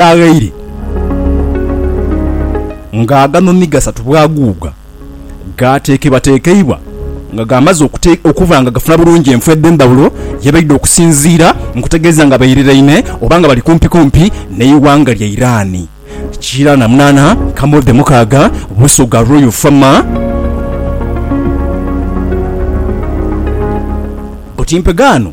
aghaire nga agano ni gasatu bwaguuga, gaateekebwateekeibwa nga gaamaze okuba nga gafuna bulungi enfo edh'endhawulo ye baidha okusinziira nkutegeeza nga bairiraine oba nga bali kumpikumpi n'eighanga lya Iran. Kiira na munaana, Camel the mukaaga, Busoga Royal Farmer, Butimpegaano.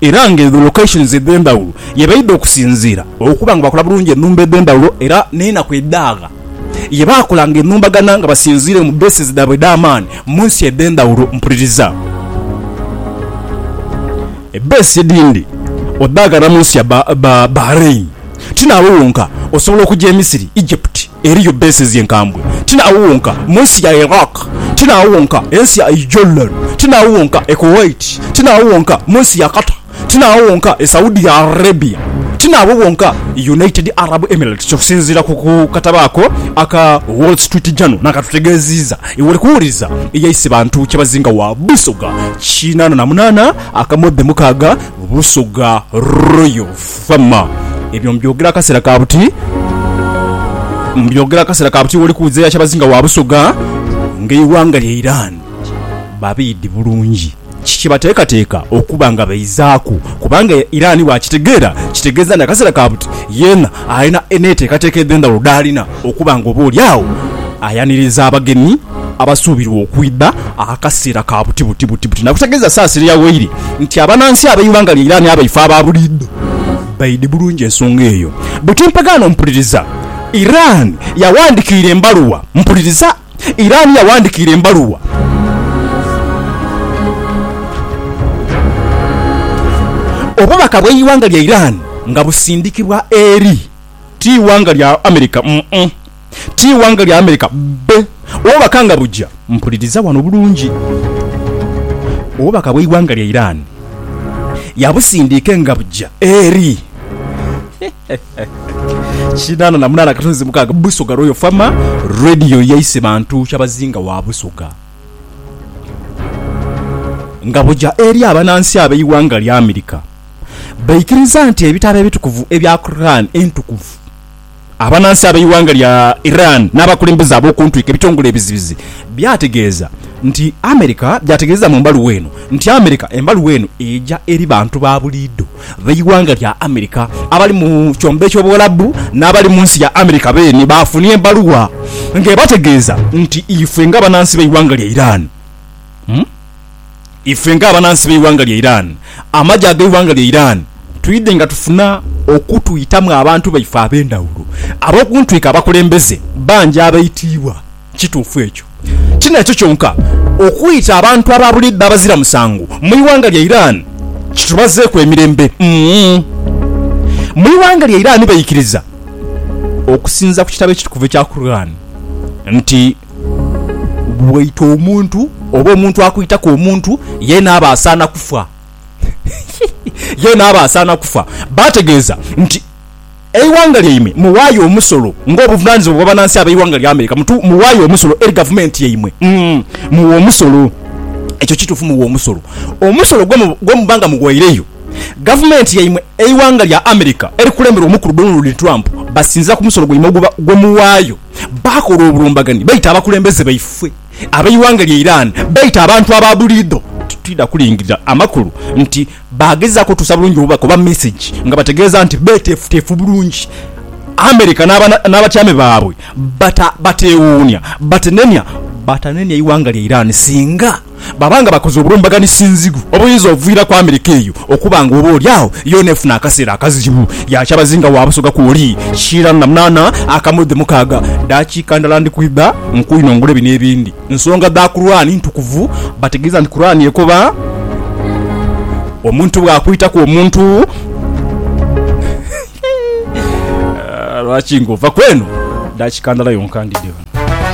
era nga edho locations edhendhawulo yebaidha okusinziira okuba nga bakola bulungi enhumba edhendhawulo era nenaku edhaagha yebakolanga enhumbagana nga basinziire mu bases dhaabwe edhamaani munsi edhendhawulo mpuliriza ebase edhindi odhaaganira munsi ya Bahrain tinaabo wonka osobola okuja emisiri, Egypt. Eriyo bases enkambwe, ti n'agho wonka, mu nsi ya Iraq, ti n'agho wonka, ensi ya Jordan, ti n'agho wonka, e Kuwait, ti n'agho wonka, mu nsi ya Qatar, ti n'agho wonka, e Saudi Arabia, ti n'agho wonka, e United Arab Emirates, okusinziira ku katabo ako aka Wall Street Journal n'akatutegeeziiza. Iwe oli kuwuliriza, eyaise bantu kyebazinga wa Busoga kinaana na munaana akamoodhe mukaaga, Busoga Royals. Wamma ebyo mbyogera akaseera ka buti, mbyogera akaseera ka buti woli kuwuliza ya kyabazinga wa Busoga nga eighanga lya Iran babiidhi bulungi ki kye bateekateeka okuba nga baizaaku kubanga Iran bwakitegeera kitegeeza nti akaseera ka buti yeena alina n'eteekateeka edh'endhawulo dh'alina okuba nga oba oli agho ayaniriza abagenyi abasuubirwa okwidha akaseera ka buti buti buti buti nakutegeeza Saasire yaghoire nti abanansi ab'eighanga lya Iran abaife aba buliidho baidhi bulungi ensonga eyo buti mpagaano mpuliriza Iran yawandikiira embaluwa mpuliriza Iran yawandikiira embaluwa. Obubaka bw'eighanga lya Iran nga busindikibwa eri. Ti ighanga lya America mm-mm. Ti ighanga lya America bbe. Obubaka nga buja, mpuliriza wano bulungi. Obubaka bw'eighanga lya Iran yabusindiike nga buja eri kinaana na munaana akatunzi mukaaga Busoga Royal Farmer Radio ya Isebantu Kyabazinga wa Busoga nga buja eri abanansi ab'eighanga lya America. baikiriza nti ebitabo ebitukuvu ebya Quran Entukuvu. Abanansi ab'eighanga lya Iran n'abakulembeze ab'okuntwiko ebitongole ebizibizi byategeeza nti America byategeeza mu mbaluwa eno nti America embaluwa eno eja eri bantu ba buliidho b'eighanga lya America abali mu kyombo eky'obuwalabu n'abali mu nsi ya America beene baafunye embaluwa ng'ebategeeza nti ifwe nga banansi b'eighanga lya Iran ife nga abanansi b'eighanga lya Iran, amagye ag'eighanga lya Iran twidhe nga tufuna okutwitamu abantu baife ab'endhawulo ab'okuntwika abakulembeze bangi abaitiibwa. Kituufu ekyo. Tinakyo kyonka, okwita abantu aba buliidho abazira musango mu ighanga lya Iran kitubazeeku emirembe. Mu ighanga lya Iran baikiriza okusinziira ku kitabo ekitukuvu ekya Quran nti. Bw'oita omuntu, oba omuntu akwitaku omuntu, yeena aba asaana kufa. Yeena aba asaana kufa. Baategeeza nti, Eighanga lyaimwe muwaayo omusolo ng'obuvunaanyizibwa bw'abanansi ab'eighanga lya America. Mutu, muwaayo omusolo eri gavumenti yaimwe. Umm, muwa omusolo. Ekyo kituufu, muwa omusolo. Omusolo gwe, gwe muba nga muwaireyo gavumenti yaimwe. Eighanga lya America erikulemberwa Omukulu Donald Trump basinziira ku musolo gwaimwe ogwe, gwe muwaayo. baakola obulumbaganhi baita abakulembeze baifwe ab'eighanga lya Iran baita abantu aba buliidho. Titwidha kulingirira amakulu nti baagezaaku otuusa bulungi obubaka oba mesegi nga bategeeza nti beeteefuteefu bulungi America n'abatyaame baabwe bateewuunia, batenenia, batanenia eighanga lya Iran singa. Baba nga bakoze obulumbaganisinzigu obuyinza oviiraku Amerika eyo okuba nga oba oli agho yoona efuna akaseera akazibu, yaakya bazinga wa Busoga kwoli kiira na munaana akamu dhi mukaaga daakiika ndala ndi kwidha nkwinongole bino ebindi. Nsonga dha Kuraani ntukuvu bategeeza nti Kuraani ekoba omuntu bw'akwitaku omuntu lwaki ng'ova kweno daakiika ndala yonka ndidhe wano.